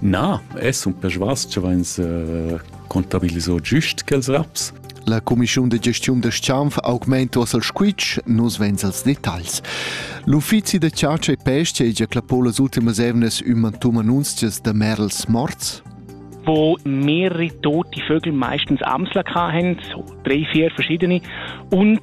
Na, es sun persvas cha vains contabiliso giust quels raps. La cumischiun de gestiun da Schanf augmento al squitsch, nus vens als detagls. L'uffizi de chatscha e pesca è già clappo las ultimas evnes ümantuma annunzias da Merls morts? wo mehrere tote Vögel meistens Amsler hatten, drei, vier verschiedene, und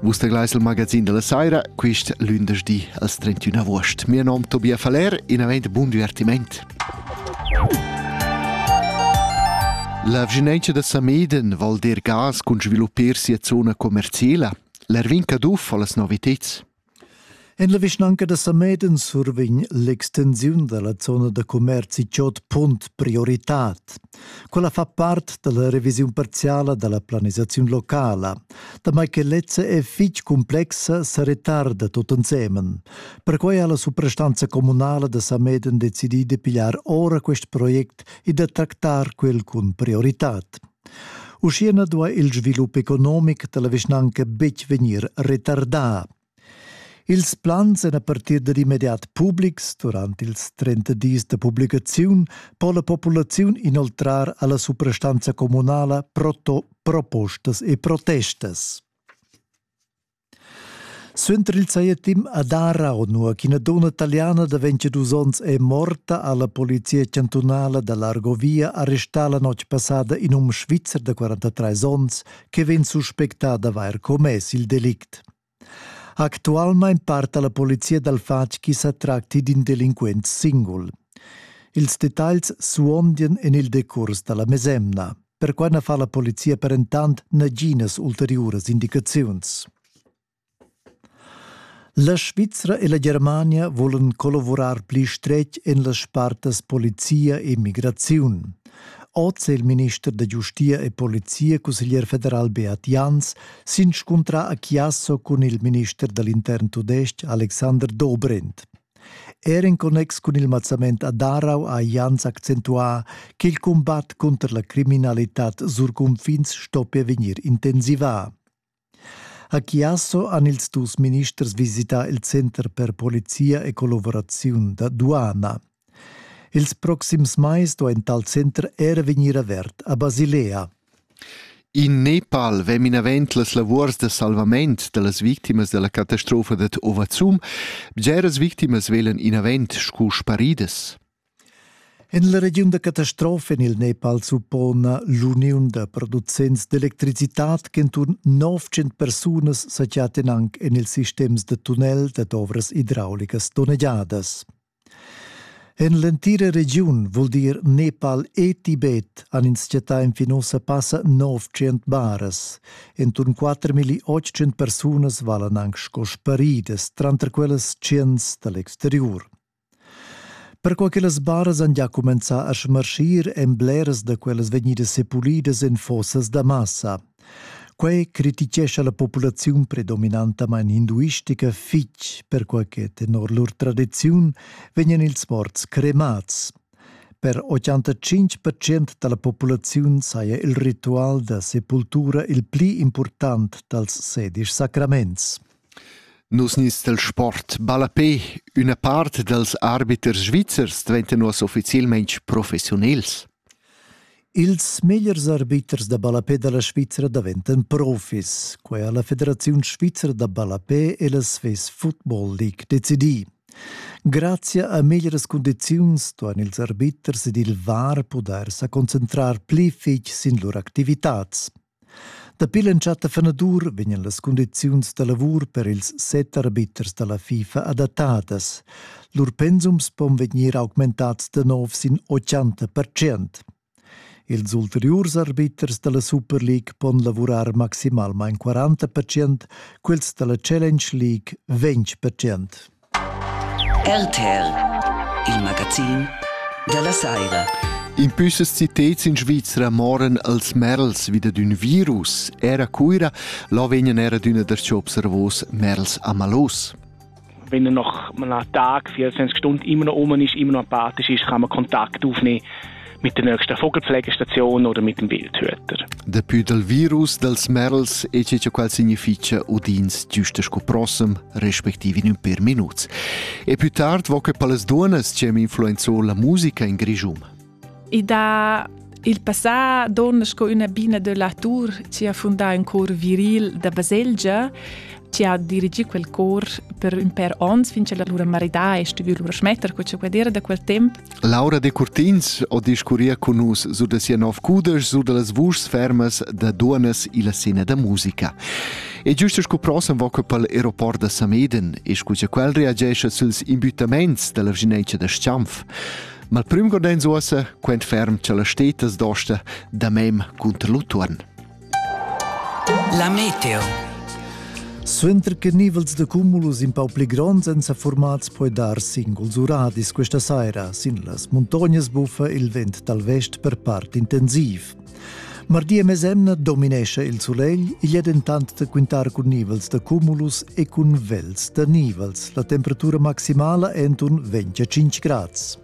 Vus teglais il magazin della saira, quist lündersdi als 31 agost. Mio nom Tobia Faller, in avent bun divertiment. La vginenza da Sameden vol dir gas cun sviluppar sia zona commerciala. L'Erwin Caduff ha las noviteds. En la vischnanca da Sameden survegn l'extensiun da la zona da commerzi Chod Punt prioritad. Quella fa part da la revisiun parziala da la planisaziun locala. Damai che lezza è fitg complexa, sa retarda tot ensemen. Perquai ha la suprastanza comunala da Sameden decidì de pigliar ora quest project e da tractar quel cun prioritad. Uschia na duai il svilup economic da la vischnanca betg vegnir retardà. Ils plans èn a partir dad immediat publics. Durant ils 30 dis da publicaziun po la populaziun inoltrar a la suprastanza communala propostas e protestas. Suenter il saietim a Darau, nua ch'ina donna italiana da 22 onns è morta, ha la polizia chantunala da l'Argovia arrestà la notg passada in um svizzer da 43 onns che vegn suspectà d'avair commess il delict. Actualmein parta la polizia dal fatg chi sa tracti d'in delinquent singul. Ils detagls suondien en il decurs da la mesemna. Perquai na fa la polizia per entant naginas ulteriuras indicaziuns. La Svizra e la Germania volan collavurar pli stretg en las spartas polizia e migraziun. Oz è il minister da giustia e polizia cusseglier federal Beat Jans s'inscuntrà a Chiasso cun il minister da l'intern tudestg Alexander Dobrindt. Er en connex cun il mazzament a Darau ha Jans accentuà che il combat cunter la criminalitad sur cunfins stoppia vegnir intensivà. A Chiasso han ils dus ministers visità il center per polizia e collavuraziun da duana. Ils proxims mais sto en tal center er vegnir avert a Basilea. In Nepal vem inavent las lavurs da salvament dallas victimas dalla catastrofa dad Ovazum. Bgeras victimas velen inavent sco sparidas. En la regiun da catastrofa en il Nepal suppona l'uniun da producents d'electricitad ch'enturn 900 persunas sa chattan anc en ils sistems da tunnel dad ovras idraulicas donnegiadas. En l'entira regiun vul dir Nepal e Tibet han ins chattà enfin ussa passa 900 baras. Enturn 4.800 persunas valan anc sco sparidas tranter quellas 100 da l'exteriur. Perquai che las baras han gia cumenzà a smarschir èn bleras da quellas vegnidas sepulidas en fossas da massa. Quai crititgescha la populaziun predominantamain hinduistica fitg, perquai che tenor lur tradiziun vegnan ils morts cremads. Per 85% da la populaziun saja il ritual da sepultura il pli important dals sedisch sacraments. Nus nis dal sport ballapè. Üna part dals arbiters svizzers dvaintan uossa ufficielmaing professiunels. Ils megliers arbiters da ballapè da la Svizra daventan profis. Quai ha la Federaziun svizra da ballapè e la Swiss Football League decidì. Grazia a meglieras cundiziuns ston ils arbiters ed il VAR pudair sa concentrar pli fich sin lur activitats. Dapi l'entschatta fanadur vegnan las cundiziuns da lavur per ils set arbiters da la FIFA adattadas. Lur pensums pon vegnir augmentads da nov sin 80 percent. Ils ulteriurs arbiters da la Super League pon lavurar maximalmain 40 percent, quels da la Challenge League 20 percent. RTR, il magazin dalla saira. In püssas citets in Svizra moran als merls wieder d'ün virus. Era Cuira, là vegnan era d'üna das observos merls amalos. Wenn er noch mal einen Tag, 24 Stunden immer noch oben ist, immer noch apathisch ist, kann man Kontakt aufnehmen. mit der nächsten Vogelpflegestation oder mit dem Wildhüter. Dapi dal virus dals Merls è ciò qual significa udins giusta sco prossem, respektive in un per minuts. E più tard vo che palas duonas c'em influenzò la musica in Grigium. E da Il passà donna sco una bina de Latour ci ha fondato un cor viril da baselgia ci ha dirigì quel cor per un per onns fin che la lura maridà è stuvì lura smettere con quella da quel tempo Laura Decurtins ho discurria cun nus sur da sia nov cudesch sur da las vuschs fermas da duonas illa scena da musica. E giusto sco prossem va que pel aeroport da Sameden e scu cha quel reagescha süls imbüttaments da la vginencia da Schianf. Ma il prüm gordens uossa quent ferm cha las stetas dosta da mem cunter l'utuon. La meteo. Suenter che nivels da cumulus in pau pli gronds èn sa formats poi dar singuls uradis questa saira sin las muntognas buffa il vent dal vest per part intensiv. Mardi e mesemna dominescha il sulegl, igl è dentant da quintar cun nivels da cumulus e cun vels da nivels. La temperatura maximala è entun 25 grads.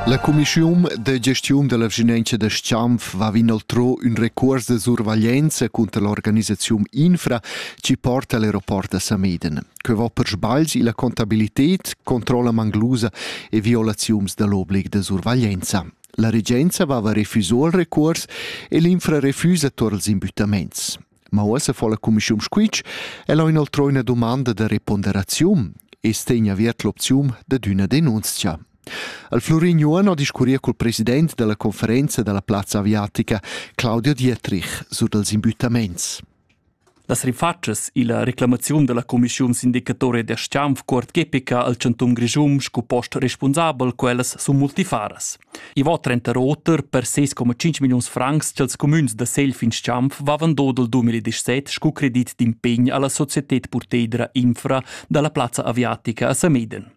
La cumischiun da gestiun dalla vischinanza da Schanf va inoltro ün recuors da survaglienza cunter l'organisaziun Infra chi porta all'aeroport da Sameden. Que va per sbagls illa contabilità, controlla manglusa e violaziuns da l'oblig da survaglienza. La regenza vava refuso il recuors e l'infra refusa tuor ils imbuttaments. Ma uossa fo la cumischiun squitsch e l'ho inoltrò üna domanda da reponderaziun e stegna aviert l'opziun dad üna denunzia. Al Florin Juan ho discurrier col president della conferenza della plazza aviatica Claudio Dietrich sur dels imbuttaments. Las rifatschas illa reclamaziun da la cumischiun sindicatoria da s-chanf cuort epica al chantun Grischun sco post respunsabel quellas sun multifaras. I va trenter oter per 6,5 milliuns francs cha'ls cumüns da segl fin s-chanf vavan do dal 2017 scu credit d'impegn a la societed purteidra infra da la plazza aviatica a Sameden.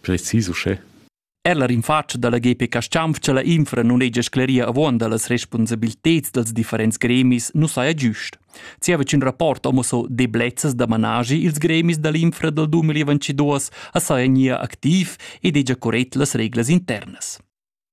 Precis uschè. Er la rinfatscha dalla GP Caschianfcha la infra non hegia scleria avuonda las respunsabilteds dals differents gremis nu saja giust. Zieva ch'ün rapport amo so deblezzas da managi ils gremis da l'infra dal 2022 as saja gnir activ ed hegia corrett las reglas internas.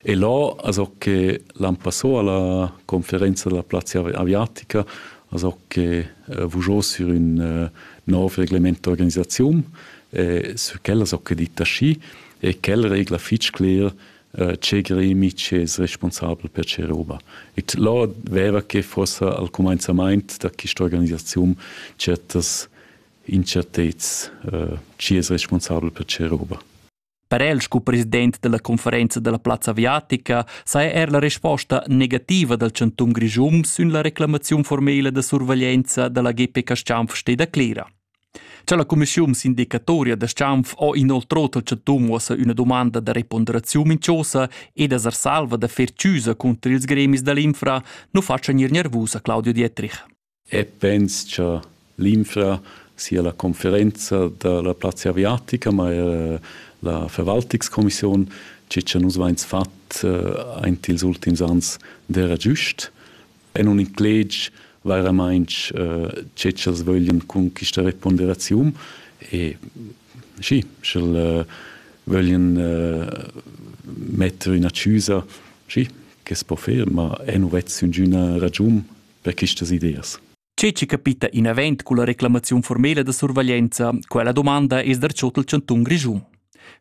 E là, also che l'an passò alla conferenza della plazza aviatica, also che eh, vuggiò sur ün eh, nov reglement d'organisaziun, e sur quella so que dit aschi, e quel regla fitg cler eh, che gremi che es responsabel per che roba. E là veva che fossa al comenzament da questa organisazione certas incertezz eh, chi es responsabel per che roba. Per el sco president dalla conferenza dalla plazza aviatica saja er la resposta negativa dal chantun Grischun sün la reclamaziun formela da surveglienza dalla GPK Stampf steda clera. Cha la commissiun sindicatoria da Stampf ho inoltrò al chantun uossa üna domanda da reponderaziun minchosa ed as salva da fer chiusa contro ils gremis dall'infra, nu faccia gnir nervusa Claudio Dietrich. e pens cha l'infra sia la conferenza da la plazza aviatica, ma eir la Verwaltungskommission, che cha nus vains fat aint ils ultims ans d'eira giust e nun incleg vairamaing che ch'els vöglian cun quista reponderaziun e schi, sch'el vöglian metter üna chüsa, schi, ch'es po fer, ma e nu vess üngüna ragiun per questas ideas. Tge che capita in event cun la reclamaziun formela da surveglianza, quella domanda es dar tschot il chantun Grischun.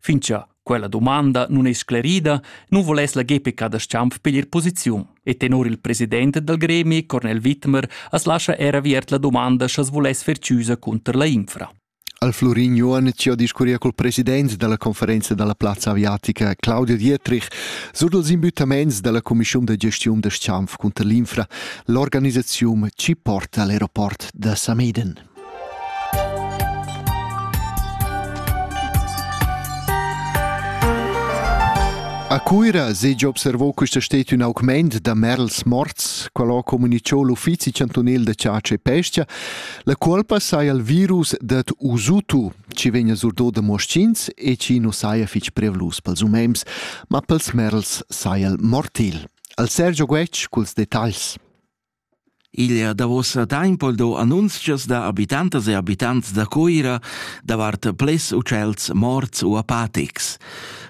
Fin cha quella domanda nun è sclerida, nun voless la GPK da Schampf piglier posiziun e tenor il president dal gremi, Cornel Wittmer, as lascha er aviert la domanda scha's voless fer chiusa cunter la infra. Al Flurin Johann ci ho discurria cul president da la conferenza da la plazza aviatica Claudio Dietrich sur dals imbüttamaints da la cumischiun da gestiun da Schanf cunter l'infra, l'organisaziun chi porta all'aeroport da Sameden. A Cuira segia observò questa stet ün augment da merls morts, qual ho comunichò l'Uffizi chantunel da chatscha e pesca, La cuolpa saja il virus dad Usutu, chi vegna surdo da moschins e chi nu saja fich prevlus pels umens, ma pels merls saja il mortil. Al Sergio Guetg culs detagls. Igl è davos tempo do annunzias da abitantas e abitants da Coira davart ples ucels morts u apatics.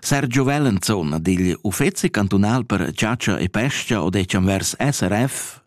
Sergio Wellenzohn digl Uffezi cantunal per ciacia e pesca o decem vers SRF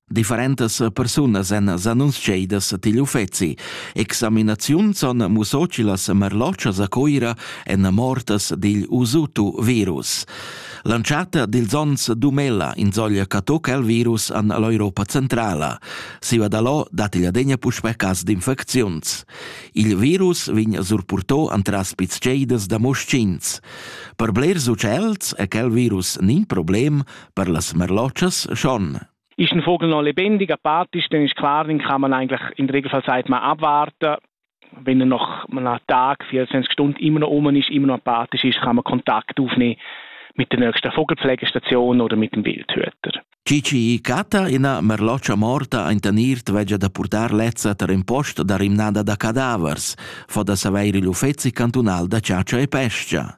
Differentas persunas èn s'annunziadas digl uffeci. Examinaziuns han mussò che las merlotschas a Coira èn mortas digl Usutu virus. L'antschatta dils onns Dumela insoglia che toc el virus an l'Europa Centrala. Siva da lo dat igl adegna puspè cas d'infecziuns. Il virus vegn surpurtò antras pitscheidas da moschins. Per blers utschels è quel virus nin problem, per las merlotschas schon. Ist ein Vogel noch lebendig, apart ist, dann ist klar, den kann man eigentlich in der Regelfallzeit mal abwarten. Wenn er noch einen Tag, 24 Stunden immer noch oben ist, immer noch apathisch ist, kann man Kontakt aufnehmen mit der nächsten Vogelpflegestation oder mit dem Wildhüter. Cici Cata, ina merloccia morta in Tanirt vegia da purtar lezza ter in post da rimnada da cadavers, fa da saveir igl uffezi cantunal da ciacia e pescia.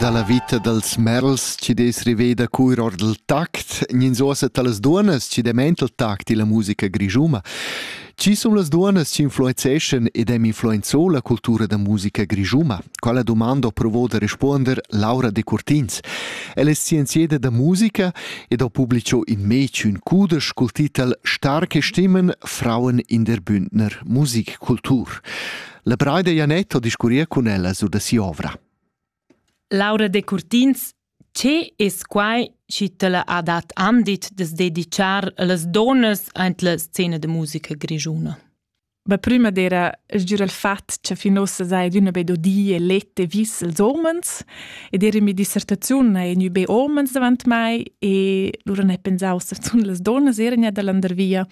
Dalla vita dals merls chi dess riveda cur or dal tact, gnins osa talas duonnas chi demen il tact illa musica grischuma. Chi sun las duonnas chi influenzeschan ed hem influenzo la cultura da musica grischuma? Quella domanda ho provo da respuonder Laura Decurtins. Ella es scienzieda da musica ed ho publicho in mez ün cudesch cul titel Starke Stimmen, Frauen in der Bündner Musikkultur. La Braida Janett ho discurrier cun ella sur da si'ovra. Laura Decurtins Che es quai chi tilla ha dat andit da's dedichar a las duonnas aint la scena da musica grischuna? Be prüma d'eira sgür il fat cha fin uossa saja adüna be do di e let e vis als uomens ed eir in mia dissertaziun haja gnü be uomens davant mai e lura n'he pensà uossa zunt las duonnas eran gnà da landervia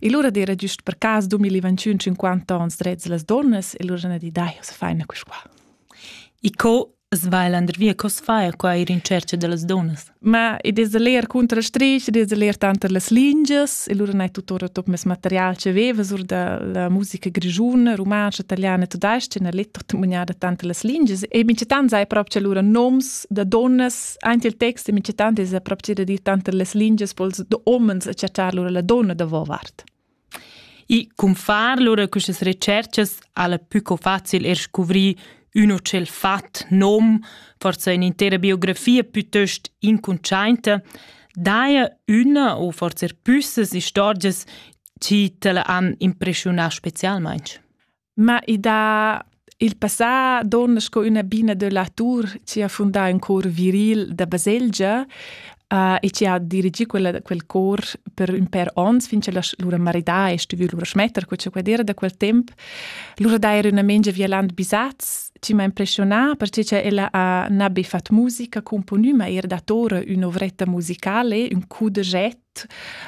e lura d'eira güst per cas 2021 50 ons drets da las duonnas e lura n'ha dit dai, uossa faina quist qua. E co as va el andervia? Co as fa qua ir in tschercha da las dunnas? Ma id es leer cunter la strich, id es leer tanter las lingias e lura n'hai tuttora tot mes material che vevas or da la musica grischuna, rumantscha, italiana e tudais-cha, n'ha let tot maniada tanter las lingias e minchatant sai prop cha lura noms da dunnas, aint il text e minchatant es prop cha da dir tanter las lingias po'ls da homens a chattar lura la donna davovart. I cunfar lura questas retscherchas ha la pü co facil er scuvrir ün o tschel fat, nom, forsa in'intera biografia pütöst incuntschainta, daja üna o forsa er püssas istorgias chi t'la han impreschiunà specialmaing. Ma i dà il passà donna sco üna bina da latur chi ha fundà ün cor viril da baselgia uh, e chi ha dirigì quella, quel cor per ün pèr ons fin cha lura maridà e stuvü lura schmetter co cha quel era da quel temp. Lura d'eira üna mengia violant bisats chi m'ha impressionà perche cha ella ha na be fat musica componü, ma eir datora ün'ovretta musicale, ün coup de jet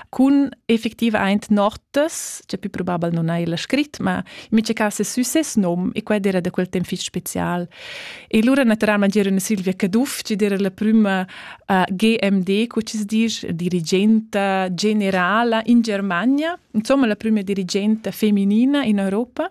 cun effectivaint notas, cioè più probabile non hai la scrit, ma in miei cas è sü ses nom e quella era da quel temp fich special. E lura naturalmente era una Silvia Caduff, che era la prima uh, GMD, co ci dice, dirigente generale in Germania, insomma la prima dirigente femminina in Europa.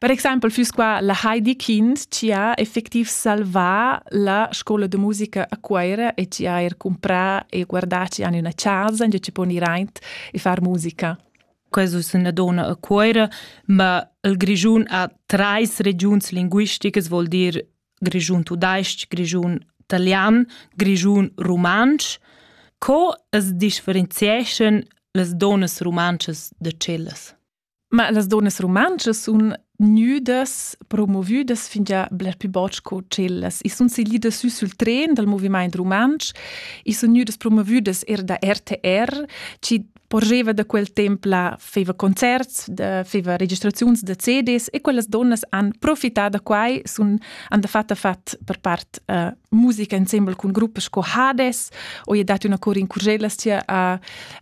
Per exempel füss qua la Heidi Kind chi ha effectiv salvà la scoula de musica a Cuoira e chi ha eir cumprà e guardà chi han üna chasa in chi pon ir aint e far musica. Questo es üna donna a Cuoira, ma il Grischun ha trais regiuns linguisticas, vuol dir Grischun tudais-ch, Grischun italian, Grischun rumantsch. Co as differenzieschan las donnas rumantschas da cellas? Ma las donnas rumantschas sun gnüdas promovüdas fingià bler pü bod sco tschellas. I sun siglidas sü sül tren dal movimaint rumantsch, i sun gnüdas promovüdas eir da RTR, chi porgeva da quel temp là feva concerts, da feva registraziuns da CDs e quellas donnas han profità da quai, sun han dafatta fat per part uh, musica insembel cun gruppas sco Hades, o i è dat üna cor in curgellas chia a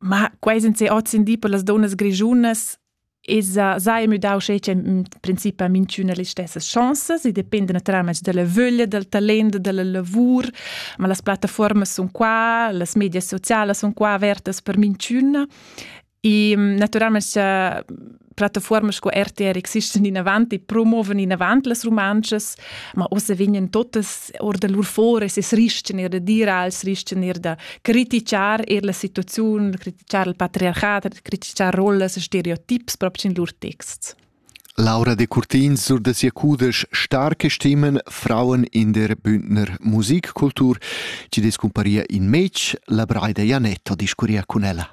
Ma quei senza ozendi per las donnas grischunas esa sai müdau schec in princip a minchüna las stessas chanzas e dependa natüralmaing dalla vöglia, dal talent, dalla lavur, ma las plattafuormas sun qua, las medias socialas sun qua avertas per minchüna e natüralmaing plattaforme sco RTR existen inavant e promoven inavant las romances, ma ossa vegnen totas or da lur fores e srichten er da dir als srichten er da criticar er la situaziun, criticar il patriarchat, criticar rollas e stereotips proprio in lur texts. Laura de Curtin sur da sia cudesch Starke Stimmen Frauen in der Bündner Musikkultur, ci descumparia in mec, la Braida Janetto discuria con ella.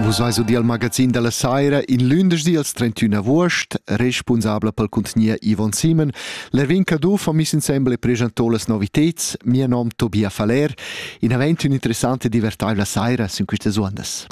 Vus veis udiu il magazin dalla Saira in lündeschdi als 31 august, responsabla pel cuntgnier Yvon Simon. L'Erwin Caduff ha miss insembel e presentò las noviteds. Mio nom Tobia Faller. In avent ün'interessante e divertaivla saira sin quistas uondas.